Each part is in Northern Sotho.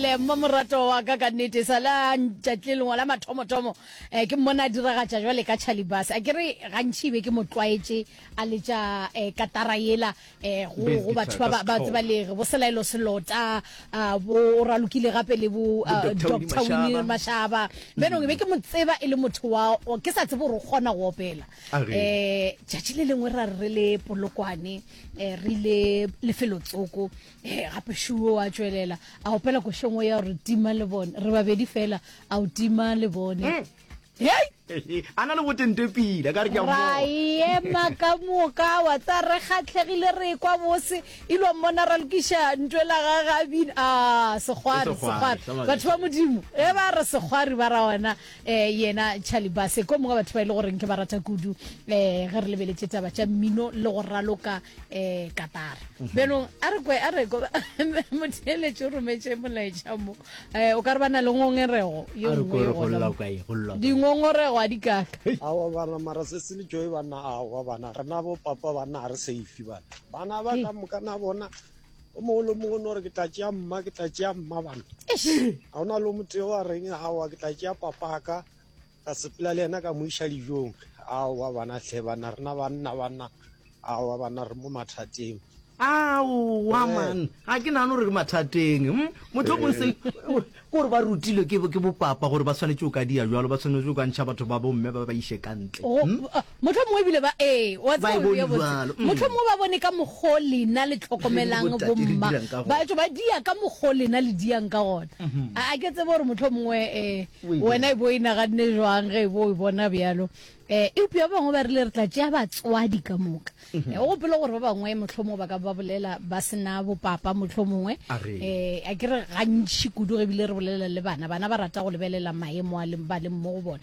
Le mmamoratwa wa ka ka nnete, e sa le a ntšatli lengwe la mathomothomo eh, ke mmone a diragatša jwale ka Charlie Bus. A ke re gantši e be ke mo tlwaetše a letša eh, katara yela eh, go, Bass go batho guitar ba, ka ba, ba tseba setlhogo. lere bo Selaelo Selota, ah, bo o ralokile gape le bo Bo ah, Dr. Winnie Dr. Winnie Mashaba. Mashaba. Bjanong e be ke mo tseba e le motho wa, wa- ke sa tsebe gore o kgona go opela. A re. Eh, tšatši le lengwe ra re re le polokwane eh, re ile lefelotsoko Ee, gape Šuo a tšwelela a opela košong o ya gore tima le bone re babedi fela a o tima le bone mm. hei a na le botente pila ka re ke ra ema ka moka wa tsa re kgatlhegile re kwa bose ilo mmona ra lokiša ntwe la ga gabin a segwari segwari batho ba modimo e ba re segwari ba ra ona um yena chalibase ko mongwe batho ba e le goreng ke ba rata kudu um ge re lebeletše taba tša mmino le go raloka eh katara mhm. benong a re kwe a re ko motheletše o rometse molaetša mo eh o ka re bana le ngongerego yo nngwe dingongorego a di kaka awa bana mara se se le joy bana awa bana re na bo papa bana re safe bana bana ba ka moka na bona o mongwe le mongwe no re ke tla tšea mma ke tla tšea mma bana ga o na le moteo wa reng awa ke tla tšea papaka Ka sepela le yena ka mo iša dijong. Aowa bana hle banna rena banna banna aowa banna re mo mathateng. Aowa man ga ke nagane gore re mathateng hm mohlomong se gore ba rutilwe ke ke bopapa gore ba swanetše go ka dia jalo ba swanetše go ka ntšha batho ba bomme ba ba iše ka ntle hm Mohlomongwe e bile ba, ee, o a tseba, o bea botse. Mohlomongwe ba bone ka mokgwa o lena le tlhokomelang bomma baetšo, ba dia ka mokgwa o lena le diang ka gona. A, a ke tsebe gore mohlomongwe um wena e bo o e naganne jwang ge e bo o e bona bjalo. Um eupša ba bangwe ba rile, Re tla tšea batswadi ka moka. O gopole gore ba bangwe mohlomongwe ba ka ba bolela ba se na bopapa mohlomongwe. Um a ke re gantši kudu ge e bile re bolela le bana, bana ba rata go lebelela maemo a ba leng mo go bona.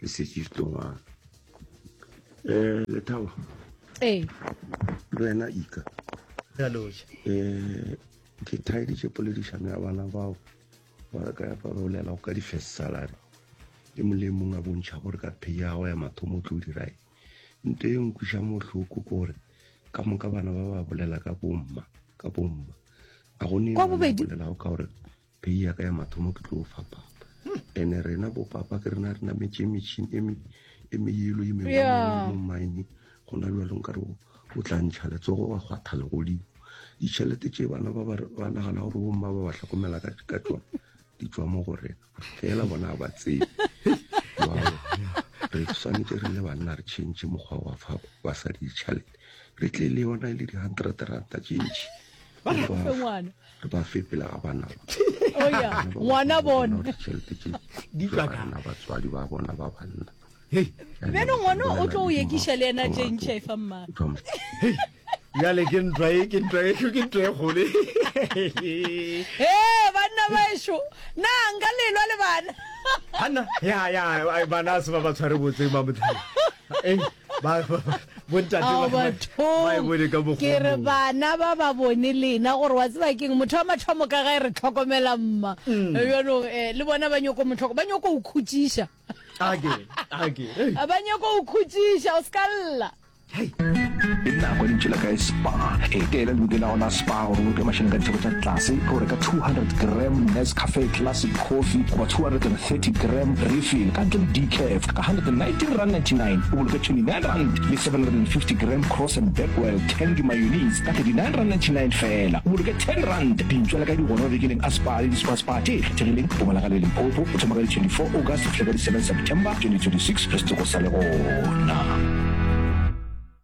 le setše ditongwana um eh, lethabo ee le wena ika um eh, ke thaeditše poledišano ya bana bao ba re ka ya parolela go ka di-first salary le molemong a bontšha gore ka phe ya go ya mathomo o tlo o dirae nto e nkwiša motlhoko ke gore ka moka bana ba ba bolela ka bomma ka bomma a go ne bolelago ka gore Pei ya ka ya mathomo ke tlo fa papa. Ene rena bo papa ke rena rena metse metshin e me e me yelo e me mo mine gona lo lo nkare o tla ntsha le tsogo wa gwa le godi. Di chelete tse bana ba ba ba na gana gore bomma ba ba tlhokomela ka ka tsone di tswa mo go rena. Fela bona ba tsebe. Re tshwanetse re le banna re change mokgwa wa fa ba sa di chelete. Re tle le yona e le di 100 ranta change. Ba re fe ngwana. re ba fe pele ga bana oya ngwana bona tšhelete tše di tswa ka na batswadi ba bona ba banna beno ngwana o tlo o yekiša le ena tše ntšha e fa mma bjale ke ntwa e ke ntwa e ke ntwa e kgole e banna baešo na nka lelwa le bana banna ya ya bana se ba ba tshware botseng ba motheo ke re bana ba ba bone lena gore wa tseba keng motho wa mathomo ka gae re tlhokomela mma mm. jalo eh, le bona ba nyoko motlhoko ba nyoko o khutsiša ba nyoko o khutsiša o se ka lla nako lentši la kae spa e teela le lokela gona spa gore o ke mašhene ka ditheko tša tlase ke gore ka 200 gram nes cafe classic coffee goba 230 gram refill ka ntle le decaf 119.99 rand, o boloka R29.750 Graham Cross and Bakewell Tandy Mayonnaise ka R39.99 rand feela, o boloka R10 rand dintšwa le ka digora mabekeleng a Spar le di-Spar Spar tše kgethegileng go bonagala le Limpopo go thoma ka di 24 August go fihla ka di 7 September 2026 re se tlo go sa le gona.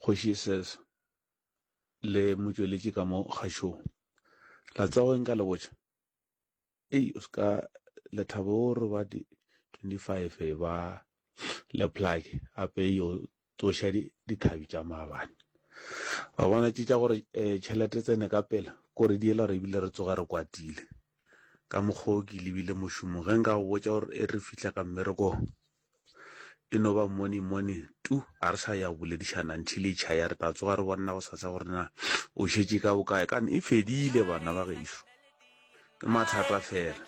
kgoši ses le motšweletši ka mo kgašong la tsago eng ka lebotša ei o seka lethabo o re ba di 25 ba leplake ape yo tsoša dithabi tša maabane ba bona tše tša gore um tšhelete tsene ka pela kore di ela gore ebile re tsoga re kwatile ka mokgwa o ke lebile mošomong ge nka go botša gore e re fitlha ka mmerekong e no ba morning morning tu a re sa ya go boledišana ntšhi le tšha ya re tla tsoga re bonna go sasa gore na o šetše ka bokae kane e fedile bana ba gešo ke mathata fela